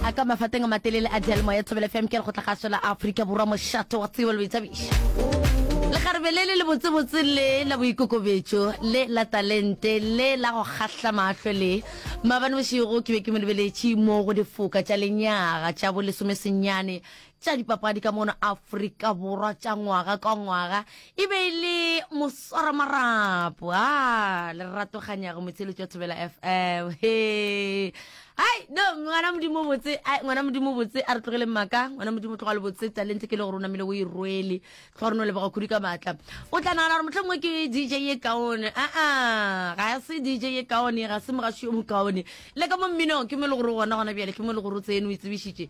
a ka mafateng a matelele a dialemoya thobela fm ke re go tla ga sola aforika borwa mošato wa tsebo le boithabišo lekgarebe le le le botsebotse le la boikokobetso le la talente le la go kgahla mahlo le maabane bošego ke be ke mo lebeletše mo go difoka tša lenyaga tša bolesomesenyane tša dipapadi ka mono Afrika Borwa tša ngwaga ka ngwaga e be e le moswaramarapo a lerato ganyago motsheletso wa thobela fm he hai no ngwana modimo botse ai ngwana modimo botse a re tlogele mmaka ngwana modimo tloga le botse talente ke le gore o namile o e rwele tloga re no leboga khudu ka maatla o tla nagana gore motlhangwe ke dj e kaone aa ga se dj e kaone ga se mogaši yo mokaone le ka mo mminong ke mo e le gore gona gona bjale ke mo e le gore o tseno o e tsebišitše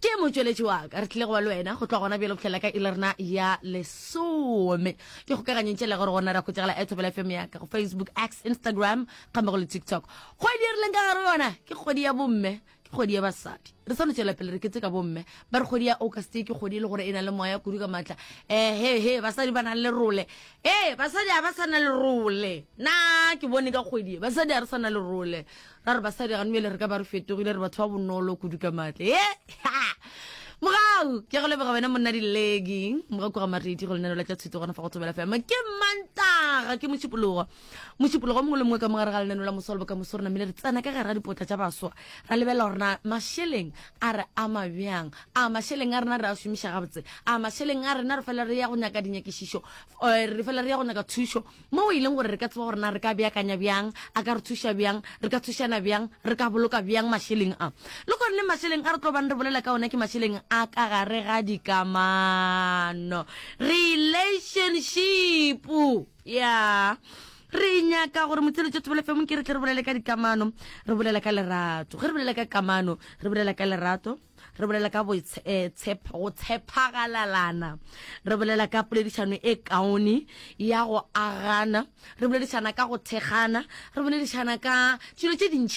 Ke motšweletši wa ka. Re tlile go ba le wena go tloga gona bjale go fihlela ka ile rena ya lesome. Ke kgokaganyeng tšela gore gona ra khwetšegela a thobela fm ya ka go facebook x instagram gambe go le tiktok kgwedi e rileng ka gare yona ke kgwedi ya bomme ke kgwedi ya basadi re sa no tšwela pele re ketse ka bomme ba re kgwedi ya august ke kgwedi e le gore e na le moya kudu ka maatla ehe he basadi ba na le role ee basadi ga ba sa na le role na ke bone ka kgwedi basadi ga re sa na le role ra re basadi gano bjale re ka ba re fetogile re batho ba bonolo kudu ka matle e mogau ke go leboga wena monna dilegi moga koga maredi go lenaneo la tša thuto gona fa go tsomela fema ke mantaga ke mošupologo mošupologo mongwe le mongwe ka mogare ga lenaneo la mosolo boka moso re namile re tsena ka gare ga dipotla tša baswa ra lebelela gorena mašeleng a re ama bjang a mašeleng a rena re a šomiša gabotse a mašeleng a rena re fela re ya go nyaka dinyakišišo eh, re fela re ya go nyaka thušo Moo e leng gore re ka tseba gore na re ka beakanya bjang, a ka re thuša bjang, re ka thušana bjang, re ka boloka bjang mašeleng a. Le goneng mašeleng a re tlo bang re bolela ka ona ke mašeleng a ka gare ga dikamano, relationship. Ya. Re nyaka gore Motseletšo Thobela FM ke re tle re bolele ka dikamano, re bolela ka lerato. Ge re bolela ka kamano, re bolela ka lerato. re bolela ka eh, go tshepagalalana re bolela ka poledišano e kaone ya go agana re boledišana ka go thekgana re boledišana ka dilo tše dintši